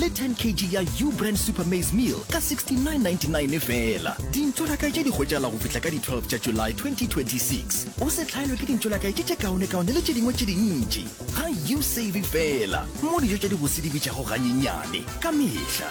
le 10 kg ya Ubrand Super Maize Meal ka 69.99 efela. Dintšolakae tše di hwetšagala go fihla ka di 12 tša July 2026. O se hlaelwe ke dintšolakae tše tše kaonekaone le tše dingwe tše dintši. Ga you save fela mo dijo tša dibose di bitšago ganyenyane ka mehla.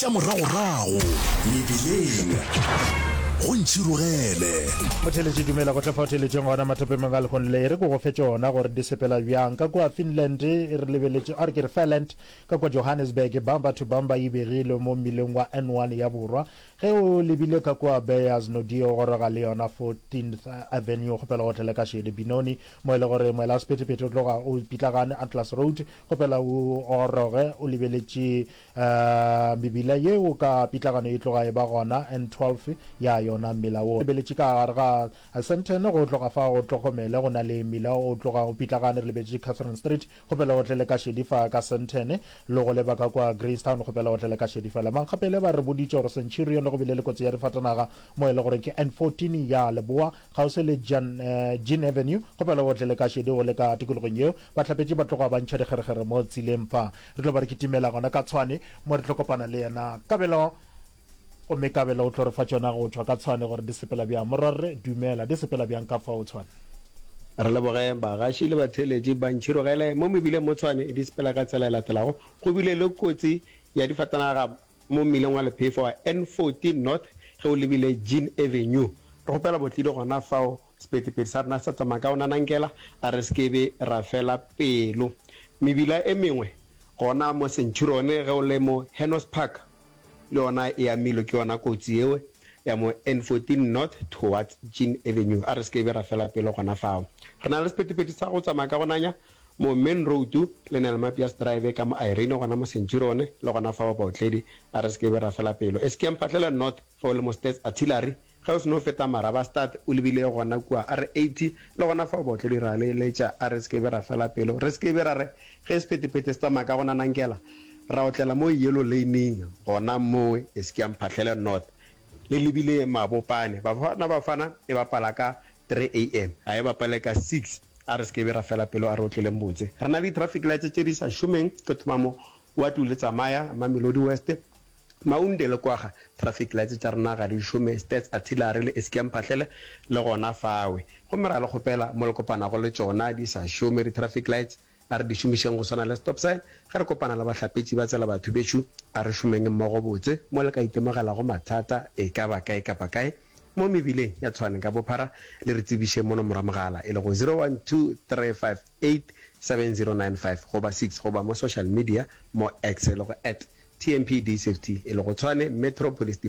Tša moragorago mebileng go ntšhirogele. Motheeletši Dumela go tla fao theeletšeng gona mathopemong a lekgong le. E re ke go fe tšona gore di sepela bjang. Ka kua Finland e re lebeletše, a re ke re Fairland, ka kua Johannesburg, Bumper to Bumper e begilwe mo mmileng wa N one ya borwa. Ge o lebile ka kua Beyers Nodie o goroga le yona Fourteenth Avenue kgopela o tlele ka Shede Benoni mo e le gore moelasephethephethe o tloga o pitlagane Atlas Road kgopela o goroge o lebeletše A Mebila yeo ka pitlagano e tloga e ba gona, N. 12 ya yona. Mmila wo o lebeletše ka gare ga Sandton go tloga fa go Tlhokomele, go na le mmila o tloga o pitlagane re lebetše Catherine Street kgopela o tlele ka šedi fa ka Sandton, lo go leba ka kua Greystown kgopela o tlele ka šedi fela. Mankgapele ba re boditše gore Centurion le go bile le kotsi ya difatanaga mo e le goreng ke N. 14 ya leboa kgauswi le Jean Avenue kgopela o tlele ka šedi o le ka tikologong yeo. Bahlapetši ba tloga ba ntšha dikgerekgere mo tseleng fa. Re tlo ba re kitimela gona ka Tshwane mo re tlo kopana le yena Kabelo, gomme Kabelo o tlo re fa tšona go tšwa ka Tshwane gore di sepela bjang. Morwa Rre, dumela, di sepela bjang ka fao Tshwane? Re leboge bagaši le batheeletši ba ntšhirogele mo mebileng mo Tshwane. Di sepela ka tsela e latelago, Go bile le kotsi ya difatanaga mo mmileng wa lephefo wa N14 North ge o lebile Jean Avenue. Re kgopela botlidi gona fao Sephethephethe sa rena sa tsamaya ka onanankela a re se ke be ra fela pelo. Mebila e mengwe gona mo Centurion ge o le mo Hennos Park le yona e amilwe ke yona kotsi yeo ya mo N14 north towards Jean Avenue. A re se ke be ra fela pelo gona fao. Re na le sephethephethe sa go tsamaya ka go nanya mo Main Road le Nelmapias Drive ka mo Irene gona mo Centurion le gona fao baotledi a re se ke be ra fela pelo. Eskeemphatlele North ge o le mo Stats Artillery Ge o se no feta Marabastad, o lebile gona kua R80, le gona fao baotledi ra le eletša, a re se ke be ra fela pelo, re se ke be ra re, Ge sephethephethe se tsamaya ka go nanankela, ra otlela mo Yellow Lane-ing, gona mo e se ke ya Mphahlele North. Le lebile Mabopane. Bafana Bafana e bapala ka 3 am. A e bapale ka 6. A re se ke be ra fela pelo, a re otleleng botse. Re na le di-traffic lights tše di sa šomeng, ke thoma mo Waterloo le tsamaya Mamelodi West, Maunde le kwaga, traffic lights tša rena ga di šome, stats, artillery le eskem phahlele le gona fawe. Gomme ra le kgopela, mo le kopanago le tšona di sa šome di traffic lights, a re di šomišeng go swana le stop sign. Ge re kopana le bahlapetši ba tsela batho bešo, a re šomeng mmogo botse. Mo le ka itemogelago mathata e ka ba kae kapa kae mo mebileng ya Tshwane ka bophara, le re tsebiše mono mora mogala e lego 012353. 87095 goba 6 goba mo social media mo X e lego at TMPD Safety e lego tshwane Metro Police Department.